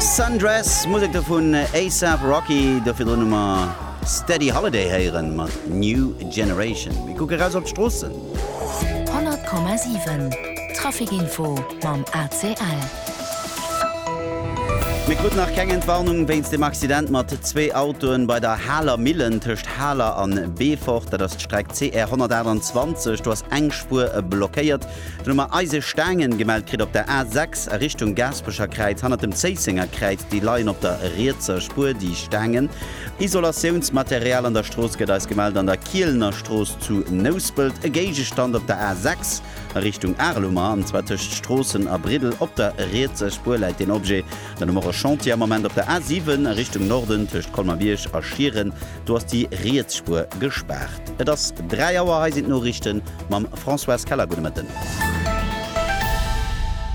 Sundress, Musek do vun A$AP Rocky, do virdrun hu mer Steady Holiday héieren mat New Generation. Mir kucke raus op d'Stroossen. 100,7 Traficinfo mam ACL. Mir kruten nach keng Entwarnung wéinst dem Accident mat zwee Autoen bei der Haler Millen tëscht Haler an Beefort. Dat ass d'Streck CR 128. Do ass eng Spuer blockéiert. D'Nummer Eisestaangen, gemellt kritt op der A6 a Richtung Gaaspecherkräiz hanner dem Zéisséngerkräiz. Déi leien op der rietser Spuer, déi Staangen. Isolatiounsmaterial an der Strooss gëtt eis gemellt an der Kielenerstrooss zu Nouspelt. E Géigestand op der A6 a Richtung Arelumer, an zwar tëscht Stroossen a Briddel. Op der rietser Spuer läit deen Objet. Dann hu mer e Chantier am Moment op der A7 a Richtung Norden tëscht Colmer-Bierg a Schieren. Do ass déi riets Spuer gespaart. Et ass 3 Auer, hei sinn d'Noriichten mam Françoise Keller. Gudde Mëtten.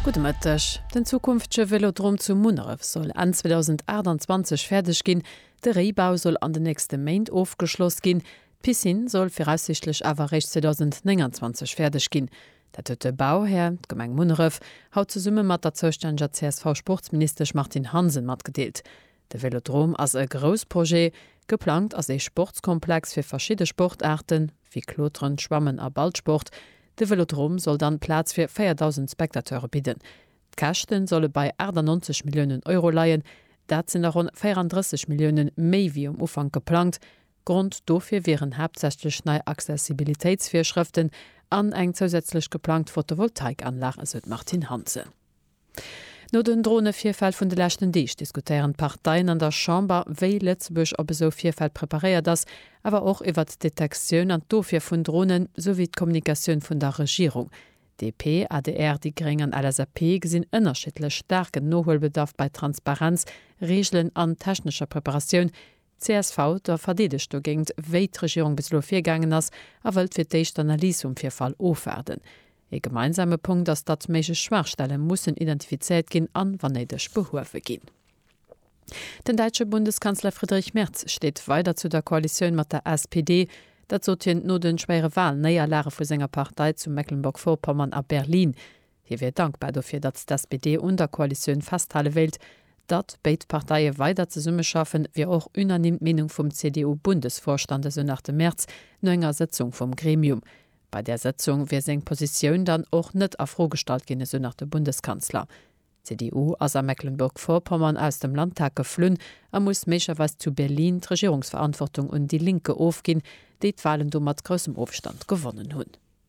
Gudde Mëtteg. Den zukünftege Vélodrom zu Munneref soll Enn 2028 fäerdeg ginn. De Réibau soll an den nächste Méint ofgeschloss ginn. D'Piscine soll viraussiichtlech awer eréischt 2029 fäerdeg ginn. Dat huet de Bauhär, d'Gemeng Munneref, haut zesumme mat der zoustänneger CSV-Sportsministesch Martine Hansen matgedeelt. De Vélodrome ass e Groussprojet. Geplangt ass ee Sportskomplex fir verschidde Sportaarten, wéi Kloteren, Schwammen a Ballsport. De Vélodrome soll dann Plaz fir 4.000 Spectateure bidden. D'Käschten solle bei 98 Milliounen Euro leien. Dat sinn der ronn 34 Milliounen méi wéi um Ufank geplangt. Grond dofir wieren haaptsächlech nei Accessibilitéitsvirschrëften an eng zousätzlech geplangt Photovoltaikanlag, esou d'Martine Hansen. No den Dronevirfäll vun de leschten Deeg diskutéieren d'Parteien an der Chamber, wéi Lëtzebuerg op esou Virfäll preparéiert ass, awer och iwwert d'Detektioun an d'Ofwier vun Dronen, souwéi d'Kommunikatioun vun der Regierung. DP, adr, déi gréng an LSAP gesinn ënnerschiddlech staarken Nohuelbedarf bei Transparenz, Reegelen an technescher Preparatioun, Csv, Der verdeedegt dogéint, wéi d'Regierung bis elo virgaangen ass a wëllt fir d'éischt d'Analys vum Virfall ofwaarden. Ee gemeinsame Punkt ass, datt méiglech Schwaachstelle mussen identifizéiert ginn a wann néideg behuewe ginn. Den däitsche Bundeskanzler Friedrich Merz steet weider zu der Koalitioun mat der SPD. Dat sot hien no de schwéiere Walnéierlage vu senger Partei zu Mecklenburg-Vorpommern a Berlin. Hie wier dankbar dofir, datt d'SPD un der Koalitioun festhale wéilt. Datt béid Parteie weider zesummeschaffen, wier och unanime d'Meenung vum CDU-Bundesvorstand, esou nach de Merz no enger Sëtzung vum Gremium. Bei där Sëtzung wier seng Positioun dann och net a Fro gestallt ginn, esou nach de Bundeskanzler. D'CDU ass a Mecklenburg-Vorpommern aus dem Landtag geflunn a muss méiglerweis zu Berlin d'Regierungsverantwortung un Die Linke ofginn, déi d'Walen do mat groussem Ofstand gewonnen hunn.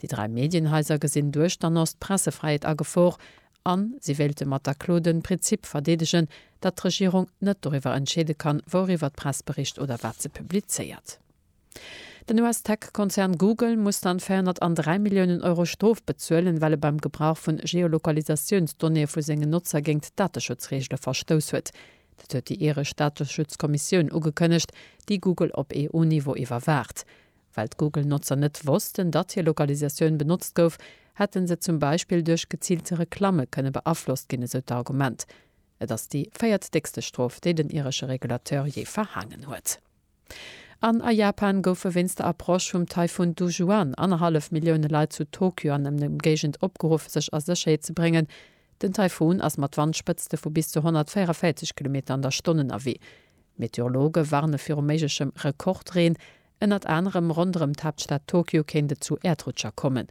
Déi dräi Medienhaiser gesinn duerchternass d'Pressefräiheet a Gefor an si wéilte mat der Klo den Prinzip verdeedegen, datt d'Regierung net doriwwer entscheede kann, wouriwwer d'Press bericht oder wat se publizéiert. Den US-Tech-Konzern Google muss dann 403 Milliounen Euro Strof bezuelen, well e beim Gebrauch vun Geolokalisatiounsdonnéeë vu sengen Notzer géint d'Dateschutzreegele verstouss huet. Dat huet déi iresch Dateschutzkommissioun ugekënnegt, déi Google op EU-Niveau iwwerwaacht. Well d'Google-Notzer net wossten, datt hir Lokalisatioun benotzt gouf, hätte se zum Beispill duerch geziilte Reklamme kënne beaflosst ginn, esou d'Argument. Et ass déi véiertdéckste Strof, déi den iresche Regulateur jee verhaangen huet. An a Japan goufe wéinst der Approche vum Taifun Dujuan annerhallef Millioune Leit zu Tokyo an Ëmgéigend opgeruff, sech a Sécherheet ze bréngen. Den Taifun ass mat Wandspëtzte vu bis zu 144 Kilometer an der Stonn ënnerwee. Meteorologe warne viru méiglechem Rekordreen. Ënnert anerem ronderëm d'Haaptstad Tokio kéint et zu Äerdrutscher kommen.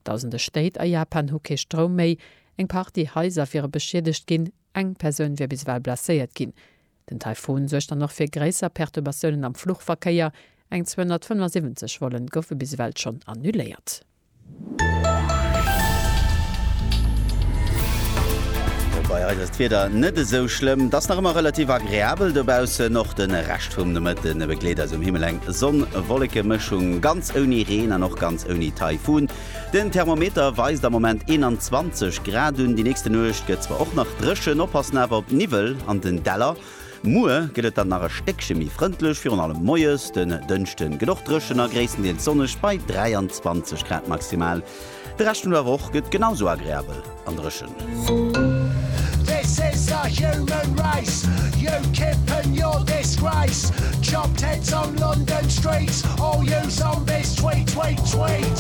Dausende Stéit a Japan hu kee Stroum méi, eng Partie Haiser wiere beschiedegt ginn, eng Persoun wier bis ewell blesséiert ginn. Den Taifun suergt dann och fir gréisser Perturbatiounen am Fluchverkéier, eng 275 Volle goufe bis ewell schonn annuléiert. Bei eis ass d'Wieder net esou schlëmm, et ass nach ëmmer relativ agreabel dobaussen. Och de Rescht vum Nomëtte begleet eis um Himmel eng Sonn-Wolleke-Mëschung, ganz ouni Reen an och ganz ouni Taifun. Den Thermometer weist am Moment 21 Grad un. Déi nächste Nuecht gëtt zwar och nach dréchen, oppassen awer op Niwwel an den Däller. Muer gëtt et dann nach e Stéckche méi frëndlech, virun allem moies. Den Dënschde gëtt och dréchen a gréisstendeels sonneg bei 23 Grad maximal. De Rescht vun der Woch gëtt genau sou agreabel an dréchen.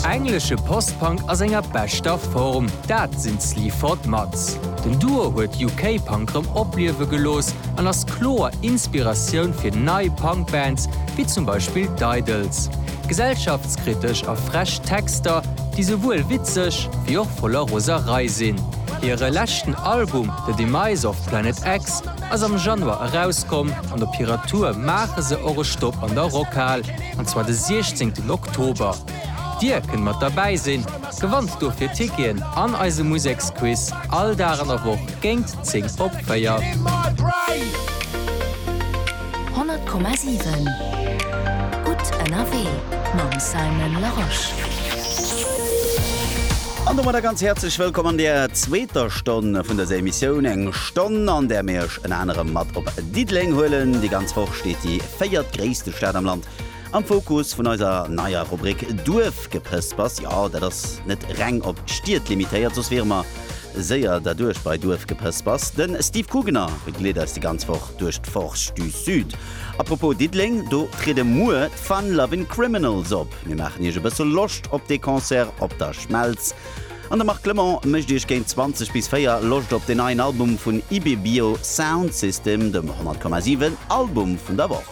Englesche Post-Punk a senger beschter Form, dat sinn d'Sleaford Mods. Den Duo huet UK-Punk rëm opliewe gelooss an ass kloer Inspiratioun fir nei Punk-Bands, wéi zum Beispill d'Idles. Gesellschaftskritesch a frech Texter, déi souwuel witzeg, wéi och voller Roserei sinn. Hire leschten Album The Demise of Planet X ass am Januar erauskomm an op hirer Tour maache se och e Stopp an der Rockhal, an zwar de 16 Oktober. Dir kënnt mat derbäi sinn! Gewannt dofir Ticketen an eise Museksquiz all Dag an der Woch géint 10 op 4. 100,7 Gutt ënnerwee mam Simon Larosche. An domat e ganz häerzlech Wëllkomm an der zweeter Stonn vun dëser Emissioun. Eng Stonn, an där mir Iech ënner anerem mat op Diddeleng huelen. Déi ganz Woch steet déi véiertgréisste Stad am Land Am Fokus vun eiser neier Rubrik Duerfgepëspers, jo, dat ass net reng op Stied limitéiert, soss wiere mer séier derduerch bei Duerfgepëspers. De Steve Kugener begleet eis déi ganz Woch duerch d'Forge du Sud. A propos Diddeleng, do triede muer d'Fun Lovin' Criminals op. Mir maachen iech e bësse Loscht op dee Concert op der Schmelz. An de Marc Clement mécht iech géint 20 bis 4 Loscht op den neien Album vun Ibibio Sound System, dem 100,7 Album vun der Woch.